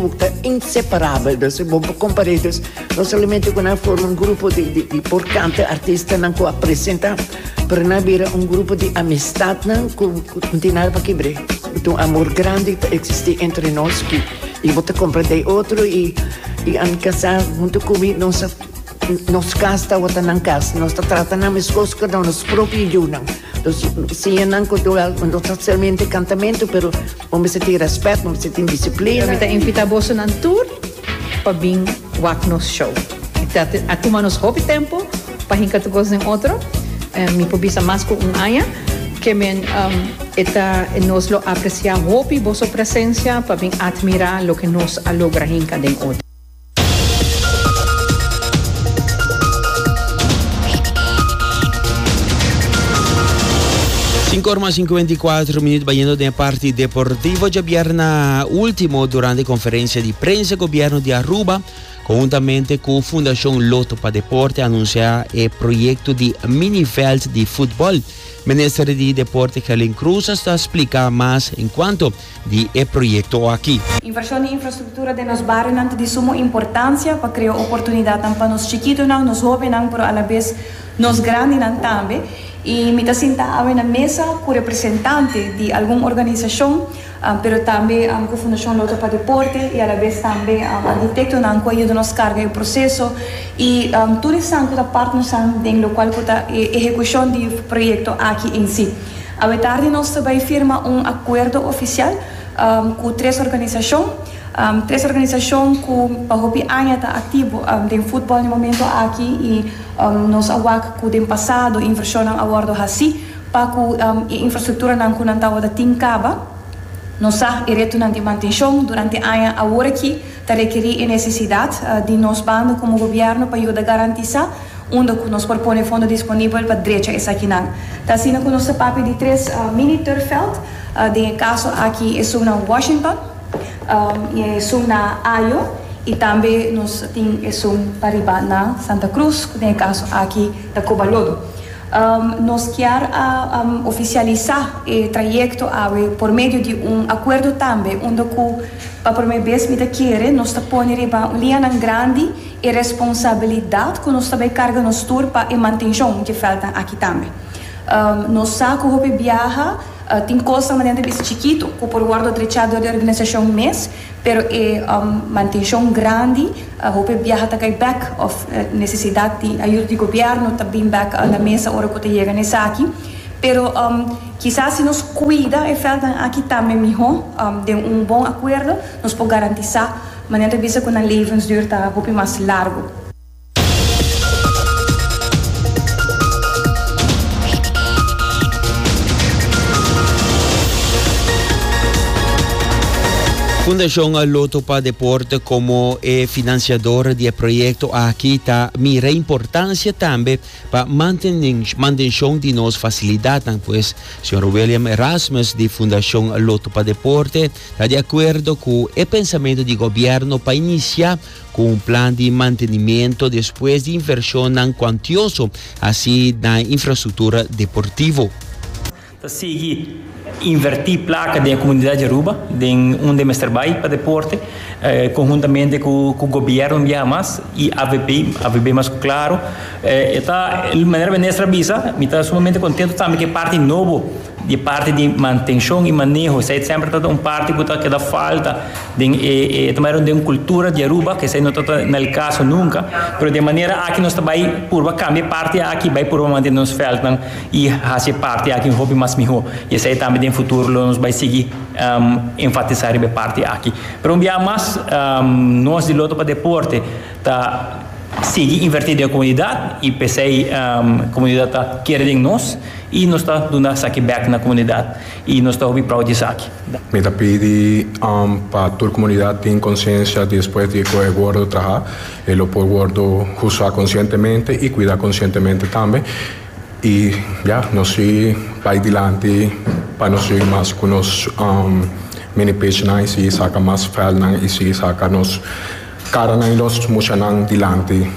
Bo ta inseparabel, dos e bo komparedos no solamente ku nan forma un grupo di di di por kanta artistanan ku a presentá pero nan a bira un grupo di amistatnan ku ku tin nada pa kibr'é i tin un amor grandi ta eksistí entre nos i bo ta komprendé e otro i i ami kasá huntu ku mi nos a Nos kas tawata nan kas. Nos ta trata nan meskos ku nos propio yunan. Los siñanan ku tur algu no ta solamente kantamentu pero bo mester tin rèspèt, bo mester tin disiplina. Mi ta invitá boso nan tur pa bin wak nos show. Ta a tuma nos hopi tempu pa hinka tu kos den otro. Mi por bisa mas ku un aña. Ke men e ta nos lo apresiá hopi boso presensia pa bin atmirá loke nos a logra hinka den otro. Sinku ora mas sinkuenta i kuater minut bayendo den e parti deportivo djabierna ultimo durante konferensia di prensa gobierno di Aruba konhuntamente ku Fundashon Loto pa Deporte anunsia e proyekto di mini veld di futbol. Minister di Deporte Gelin Cruz a sta splika mas en kuanto di e proyekto aki. Invershon di infrastruktura den nos barionan ta di sumo importansia pa krea oportunidatnan pa nos chikitonan, nos hobennan pero alabes nos grandinan tambe. I mi ta sinta awe na mesa ku representante di algun organisashon pero tambe ku Fundashon Lotto pa Deporte i alabes tambe arkitektonan ku a yuda nos karga e proseso i tur esnan ku ta partnernan den lokual ku ta e ehekushon di proyekto aki en si. Awetardi nos ta bai firma un akuerdo ofisial ku tres organisashon, tres organisashon ku pa hopi aña ta aktivo den futbòl den momentu aki i nos a wak ku den pasado invershonnan a wòrdu hasi pa ku e infrastrukturanan ku nan tabata tin kaba. Nos sa e retonan di mantenshon durante aña aworakí. Ta rekerí e nesesidat di nos banda komo gobièrnu pa yuda garantisá unda ku nos por pone fondo disponibel pa drecha esakinan. Ta asina ku nos ta papia di tres mini turfveld, den e kaso aki esun na Washington, i esun na Ajo i tambe nos tin esun pa riba na Santa Cruz, ku den e kaso aki ta Cobalodo. Nos kier a ofisialisá e trayekto awe por medio di un akuerdo tambe unda ku. Pa promé bes mi ta kere nos ta pone riba un lianan grandi e responsabilidat ku nos ta bai karga nos tur pa e mantenshon dje vèltnan aki tambe. Nos sa ku hopi biaha tin kosnan manera ta bisa chikitu ku por wòrdu trechá dor di organisashon mes, pero e mantenshon grandi hopi biaha ta kai bèk òf nesesidat di ayuda di gobièrnu ta bin bèk na mesa ora ku ta yega na esaki. Pero. Kisas si nos kuida e vèltnan aki tambe mihó, den un bon akuerdo nos por garantisá manera ta bisa ku nan levensduur ta hopi mas largu. Fundashon Lotto pa Deporte komo e finansiador di e proyekto aki ta mira importansia tambe Pa mantenshon di nos fasilidatnan pues, Señor William Erasmus di Fundacion Lotto pa Deporte ta di acuerdo cu e pensamentu di gobierno pa inicia cu un plan di mantenimiento despues di inversionnan cuantioso haci na infrastructura deportivo. Ta sigui invertí plaka den e komunidat di Aruba, den unda e mester bai pa deporte, konhuntamente ku gobièrnu di Hamas i avp, avp mas ku Claro. E ta, manera Minister a bisa, mi ta sumamente kontentu tambe ku e parti nobo di e parti di mantenshon i maneho. Esei semper ta un parti ku ta keda falta den e, ta manera un den kultura di Aruba, ku esei no tabata na el kaso nunka. Pero den manera aki nos ta bai purba kambia e parti aki, bai purba mantene nos vèldnan. i hasi e parti aki hopi mas mihó, i esei tambe den futuro lo nos bai sigui enfatisá riba e parti aki. Pero un biaha mas, nos di Lotto pa Deporte ta sigui invertí den e komunidat i p'esei komunidat ta kere den nos i nos ta duna esaki bèk na komunidat i nos ta hopi proud di esaki. Mi ta pidi pa tur komunidat tin konsiensia di despues di e koe e wordo trahá e lo por wordo usá konsientemente i kuidá konsientemente tambe Y ya, nos a bay dilanti pa nos sigui mas cu nos mini pishnan y sigui saca mas velnan y sigui saca nos caranan y nos mushanan dilanti.